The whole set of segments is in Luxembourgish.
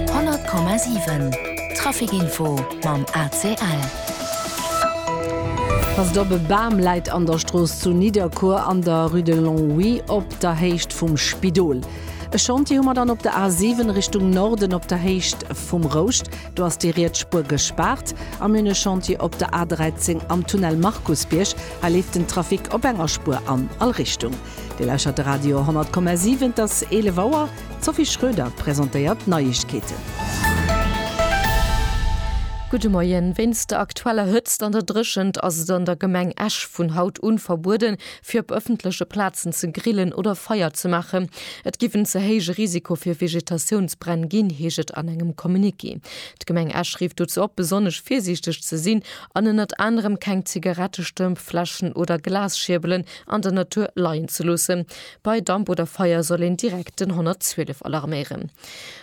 100,7 Trafic info mam ACL. Passt op, E Bam läit an der Strooss zu Nidderkuer an der Rue de Longwy op der Héicht vum Spidol. E Chantier hu mer dann op der A 7 Richtung Norden op der Héicht vum Rouscht. Do ass déi riets Spuer gespaart. A mir hunn e Chantier op der A 13 am Tunnel Markusbierg. Hei leeft den Trafic op enger Spuer an all Richtung. Dir lauschert de Radio 100,7, et ass 11 Auer. D'Sophie Schröder presentéiert d'Neiegkeeten. Gudde Moien. Wéinst der aktueller Hëtzt an der Dréchent ass et an der Gemeng Esch vun haut un verbueden, fir op ëffentleche Plazen ze grillen oder Feier ze maachen. Et giff en ze héije Risiko fir Vegetatiounsbränn ginn, heescht et an engem Communiqué. D'Gemeng Esch rifft dozou op, besonnesch virsiichteg ze sinn an ënnert anerem keng Zigarettestëmp, Fläschen oder Glasschierbelen an der Natur leien ze loossen. Bei Damp oder Feier soll een direkt den 112 alarméieren.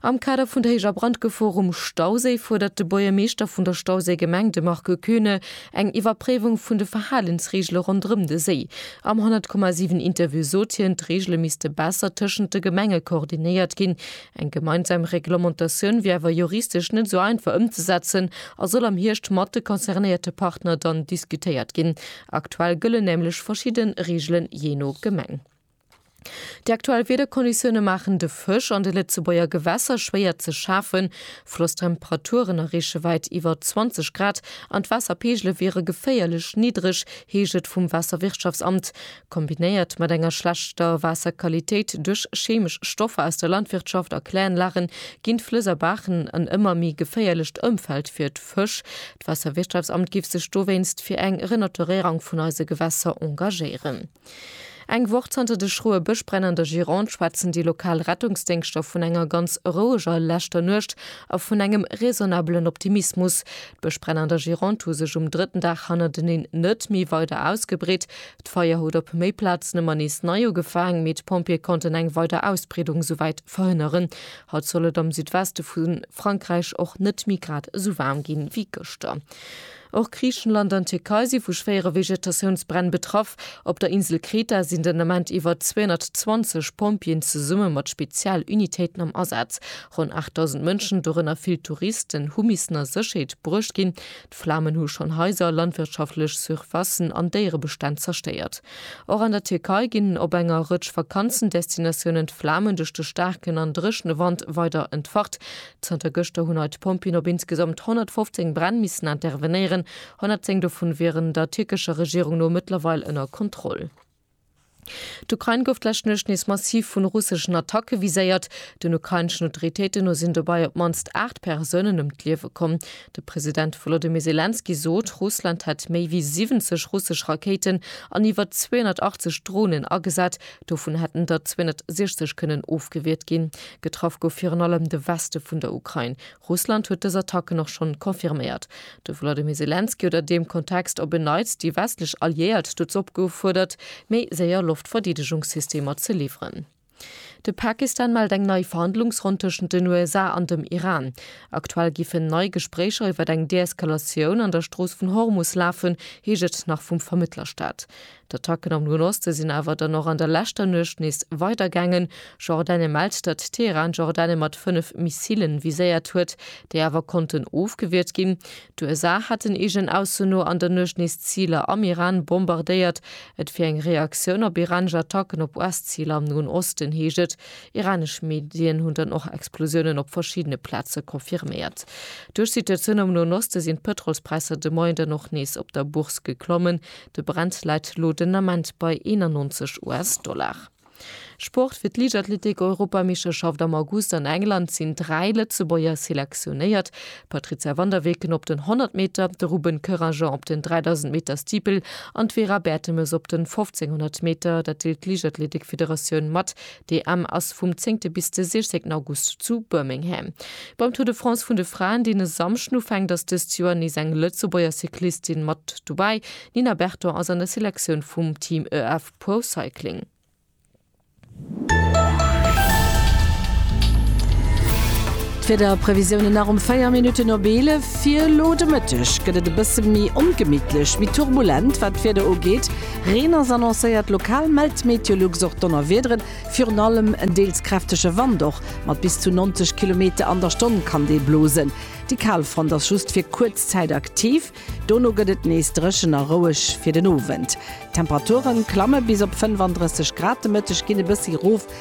Am Kader vun der héijer Brandgefor um Stauséi fuerdert de Buergermeeschter vun der Stauséigemeng, de Marc Koeune, eng Iwwerpréiwung vun de Verhalensreegele ronderëm de Séi. Am 100,7 Interview sot hien, d'Reegele misste besser tëschent de Gemenge koordinéiert ginn. Eng gemeinsam Reglementatioun wier awer juristesch net esou einfach ëmzesetzen a soll am Hierscht mat de concernéierte Partner dann diskutéiert ginn. Aktuell gëllen nämlech verschidde Reegelen jee no Gemeng. Déi aktuell Wiederkonditioune maachen de Fësch an de Lëtzebuerger Gewässer schwéier ze schafen. Flosstemperaturen erreeche wäit iwwer 20 Grad an d'Waasserpeegele wiere geféierlech niddreg, heescht et vum Waasserwirtschaftsamt. Kombinéiert mat enger schlechter Waasserqualitéit duerch cheemesch Stoffer aus der Landwirtschaft a Kläranlagen, ginn d'Flëss a Baachen en ëmmer méi geféierlecht Ëmfeld fir Fësch. D'Waasserwirtschaftsamt giff sech dowéinst fir eng Renaturéierang vun eise Gewässer engagéieren. Eng Woch zanter de schroe Bëschbränn an der Gironde schwätzen déi lokal Rettungsdéngschter vun enger ganz roueger leschter Nuecht a vun engem raisonnabelen Optimismus. D'Bëschbränn an der Gironde hu sech um drëtten Dag hannerteneen net méi weider ausgebreet. D'Feier huet op méi Plazen ëmmer nees nei ugefaang, mee d'Pompjeeë konnten eng weider Ausbreedung souwäit verhënneren. Haut soll et am Südweste vu Frankräich och net méi grad esou waarm gi wéi gëschter. Och Griichenland an d'Tierkei si vu schwéiere Vegetatiounsbränn betraff. Op der Insel Kreta sinn den Ament iwwer 220 Pompjeeën zesumme mat Spezialunitéiten am Asaz. Ronn 8.000 Mënschen, dorënner vill Touristen, hu missen a Sécherheet bruecht ginn. D'Flamen hu schonn Haiser, landwirtschaftlech Surfacen an Déierebestänn zerstéiert. Och an der Tierkei ginn op enger Rëtsch Vakanzendestinatiounen d'Flamen duerch de staarken an dréchene Wand weider entfacht. Zanter gëschter hunn hei d'Pompjeeën op insgesamt 115 Bränn missen intervenéieren. 110 dovun wieren der tierkescher Regierung no mëttlerweil ënner Kontroll. D'Ukrain gouf d'lescht Nuecht nees massiv vun russeschen Attacke viséiert. Den ukraineschen Autoritéiten no sinn dobei op d'mannst 8 Persounen ëm d'Liewe komm. De President Volodymyr Selenskyj sot, Russland hätt méi wéi 70 russesch Rakéiten an iwwer 280 Dronen agesat, dovun hätten der 260 kënnen ofgewiert ginn. Getraff gouf virun allem de Weste vun der Ukrain. Russland huet dës Attacken och schonn confirméiert. De Volodymyr Selenskyj huet an deem Kontext op en Neits déi westlech Alliéiert dozou opgeufuerdert, méi séier Loftverdeedegungssystemer ze liwweren. De Pakistan mellt eng nei Verhandlungsronn tëschent den USA an dem Iran. Aktuell giffen nei Gespréicher iwwer eng Deeskalatioun an der Strooss vun Hormus lafen, heescht et nach vum Vermëttlerstat. D'Attacken am Noen Oste sinn awer dann och an der leschter Nuecht nees weidergaangen. Jordanie mellt, datt Teheran Jordanie mat fënnef Missilen viséiert huet, déi awer konnten ofgewiert ginn. D'USA hätten eegen Ausso no an der Nuecht nees Ziler am Iran bombardéiert. Et wier eng Reaktioun op iranesch Attacken op US-Ziler am Noen Osten, heescht et. Iranesch Medien hunn dann och Explosiounen op verschiddene Plaze confirméiert. Duerch d'Situatioun am Noen Oste sinn d'Pëtrolspräisser de Moien dann och nees op der Bourse geklommen. De Brent läit elo den Ament bei 91 US-Dollar. Sport, Fir d'Liichtathletik-Europameeschterschaft am August an England sinn dräi Lëtzebuerger selektionéiert, d'Patrizia van der Weken op den 100 Meter, de Ruben Koeranger op den 3000 Meter Steeple an d'Vera Bertemes op den 1500 Meter. Dat deelt d'Liichtathletik-Federatioun mat. D'EM ass vum zéngte bis de siechzéngten August zu Birmingham. Beim Tour de France vun de Fraen, deen e Samschden ufänkt, ass dëst Joer nees eng Lëtzebuerger Cyclistin mat dobäi. D'Nina Berton ass an der Selektioun vum Team EF Pro Cycling. D'Wiederprevisiounen nach um 4 Minutten op 11. Fir elo de Mëtteg gëtt et e bësse méi ongemittlech, méi turbulent wat d'Wieder ugeet. Reen ass annoncéiert, lokal mellt Meteolux och Donnerwiederen, virun allem en deels kräftege Wand. Och mat bis zu 90 Kilometer an der Stonn kann dee blosen. Déi Kalfront ass just fir kuerz Zäit aktiv, dono gëtt et nees dréchen a roueg fir den Owend. D'Temperature klamme bis op 35 Grad, de Mëtteg ginn e bëssi erof.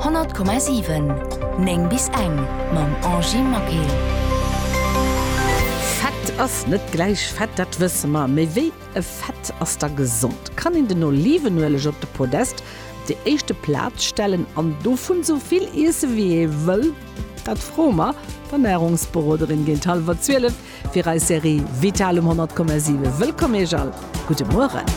100,7 9 bis eng mam Angie Maquet. Fett ass net gläich fett, dat wësse mer. Mee wéi e Fett ass da gesond? Kann een den Olivenueleg op de Podest, op déi éischte Plaz stellen an dovun sou vill iesse wéi ee wëll? Dat froe mer d'Ernärungsberoderin géint hallwer 12 fir eis Serie Vital um 100,7. Wëllkomm Iech all, gudde Mueren.